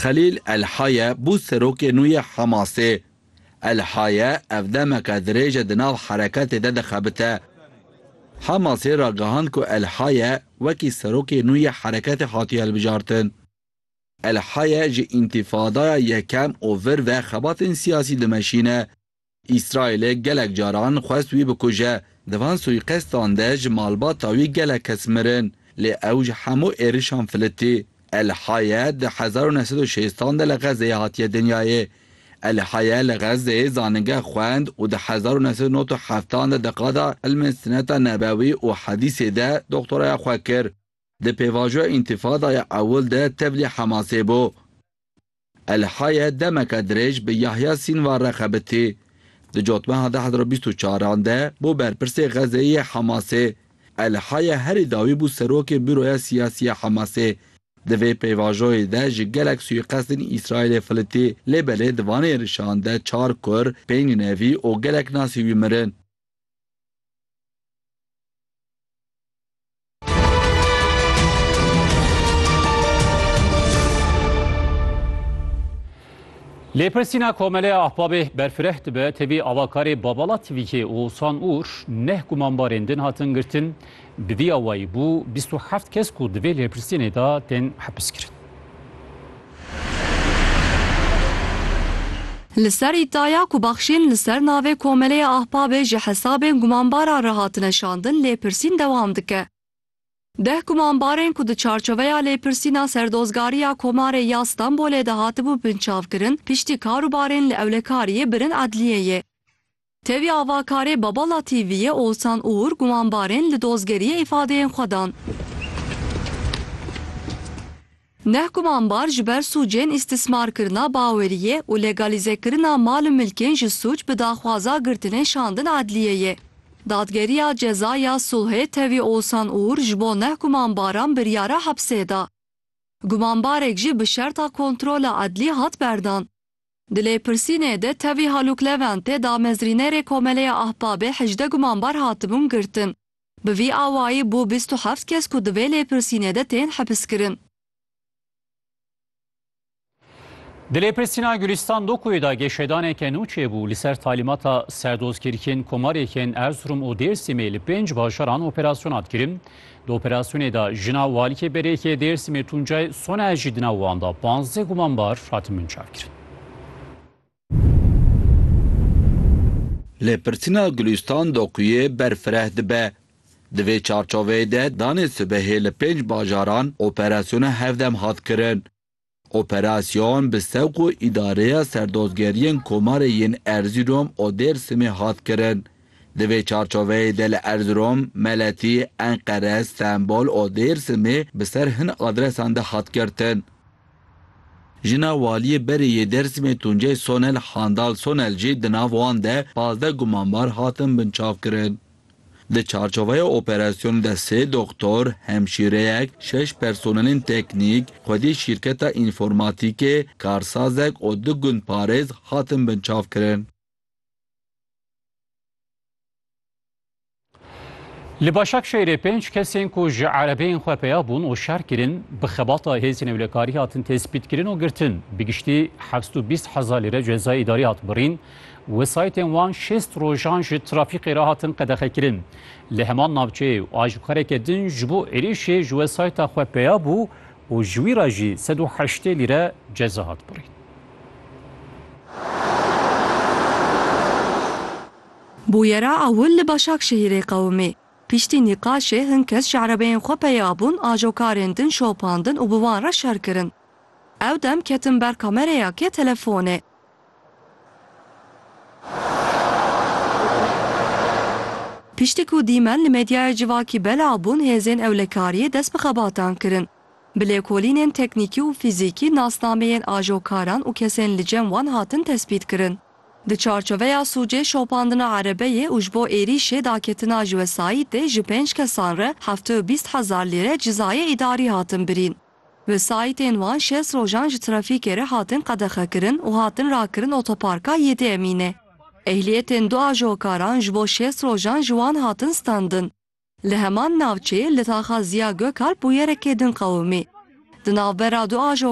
Xelîl El-Haye bû serokê nû yê Hamasê. El-Haye ev demeke dirêj e di nav hereketê de dixebite. Hamasê ragihand ku El-Haye wekî serokê nû yê hereketê hatiye hilbijartin. El-Haye ji Întifadaya Yekem û vir ve xebatên siyasî dimeşîne. Îsraîlê gelek caran xwest wî bikuje. Di van suîqestan de ji malbata wî gelek kes mirin. Lê ew ji hemû êrişan filitî. El Haye di hezar û neh sed û şêstan de li Xezzeyê hatiye dinyayê. El Haye li Xezzeyê zanîngeh xwend û di hezar û neh sed û nod û heftan de di qada Ilmên Sineta Nebewî û Hedîsê de doktoraya xwe kir. Di pêvajoya Întifadaya Ewil de tevlî Hemasê bû. Elhaye demeke dirêj bi Yahya Sînwar re xebitî. Di cotmeha deh hezar û bîst û çar an de bû berpirsê Xezeyê yê Hemasê. Elhaye herî dawî bû serokê Bûroya Siyasî ya Hemasê. Di vê pêvajoyê de ji gelek sûîqestên Îsraîlê filitî, lê belê di van êrişan de çar kur, pênc nevî û gelek nasî wî mirin. Lêpirsîna Komeleya Ahbabê berfireh dibe tevî avakarê Babala TVK'ê Oğuzhan Uğur neh gumanbarên din hatin girtin, bi vî awayî bû bîst û heft kes ku di vê lêpirsînê de tên hepiskirin. Li ser îdaya ku bexşîn li ser navê Komeleya Ahbabê ji hesabên gumanbaran re hatine şandin lêpirsîn dewam dike. Deh gumanbarên ku di çarçoveya lêpirsîna Serdozgariya Komarê ya Stenbolê de hatibû binçavkirin, piştî karûbarên li Ewlekariyê birin edliyeyê. Tevî avakarê Babala TV'yê Oğuzhan Uğur gumanbarên li dozgeriyê îfadeyên xwe dan. Neh gumanbar ji ber sûcên îstîsmarkirina baweriyê û legalîzekirina mal û milkên ji sûc bi daxwaza girtinê şandin edliyeyê. Dadgeriya Ceza ya Sulhê tevî Oğuzhan Uğur ji bo neh gumanbaran biryara hepsê da. Gumanbarek jî bi şerta kontrola edlî hat berdan. Di lêpirsînê de tevî Halûk Leventê damezrînerê Komeleya Ahbabê hejdeh gumanbar hatibûn girtin. Bi vî awayî bû bîst û heft kes ku di vê lêpirsînê de tên hepiskirin. Di lêpirsîna Gulîstan Dokoyê de geşedaneke nû çêbû. Li ser talîmata serdozkirkên komarê yên Erzurum û Dêrsimê li pênc bajaran operasyona dikirin. Di operasyonê de jina walîkê berêkê Dêrsimê Tuncay Soner jî di nav wan de panzdeh gumanbar hatin binçavkirin. Lê pirsîna Gulîstan Dokuyê ber fireh dibe. Di vê çarçoveyê de danê sibehê li pênc bajaran operasyona hevdem hat kirin. Operasyon bi sewqu Îdareya Serdozgeriyên Komarê yên Erzîrom û Dêrsimê hat kirin. Di vê çarçoveyê de li Erzirom, Meletî, Enqere, Stenbol û Dêrsimê bi ser hin adresan de hat girtin. Jina Waliyê berê yê Dêrsimê Tuncay Sonel Handal Sonel jî di nav wan de pazdeh gumanbar hatin binçavkirin. Di çarçoveya operasyonê de sê doxtor, hemşîreyek, şeş personelên teknîk, xwedî şîrketa înformatîkê, karsazek û du gundparêz hatin binçavkirin. Li Başakşehîrê pênc kesên ku ji erebeyên xwe peya bûn û şer kirin, bi xebata hêzên ewlekarî hatin tespîtkirin û girtin. Bi giştî heft û bîst hezar lîre cezayê îdarî hat birîn. Wesayîtên wan şêst rojan ji trafîkê re hatin qedexekirin. Li heman navçeyê û aşikareke din ji bo êrîşê ji wesayîta xwe peya bû û ji wî re jî sed û heştê lîre ceza hat birîn. Bûyera ewil li Başakşehîrê qewimî. Piştî nîqaşê hin kes ji erebeyên xwe peya bûn, ajokarên din şopandin û bi wan re şer kirin. Ew dem ketin ber kamereyakê telefonê. Piştî ku dîmen li medyaya civakî belav bûn hêzên ewlekariyê dest bi xebatan kirin. Bi lêkolînên teknîkî û fîzîkî nasnameyên ajokaran û kesên li cem wan hatin tespîtkirin. Di çarçoveya sûcê şopandina erebeyê û ji bo êrîşê daketina ji wesayîtê ji pênc kesan re heftê û bîst hezar lîre cizayê îdarî hatin birîn. Wesayîtên wan şeş rojan ji trafîkê re hatin qedexekirin û hatin rakirin otoparka Yedi Emîne. Ehliyetên du ajokaran ji bo şeş rojan ji wan hatin standin. Li heman navçeyê li taxa Ziya Gökalp bûyereke din qewimî. Di navbera du ajokaran de bûyereke din qewimî.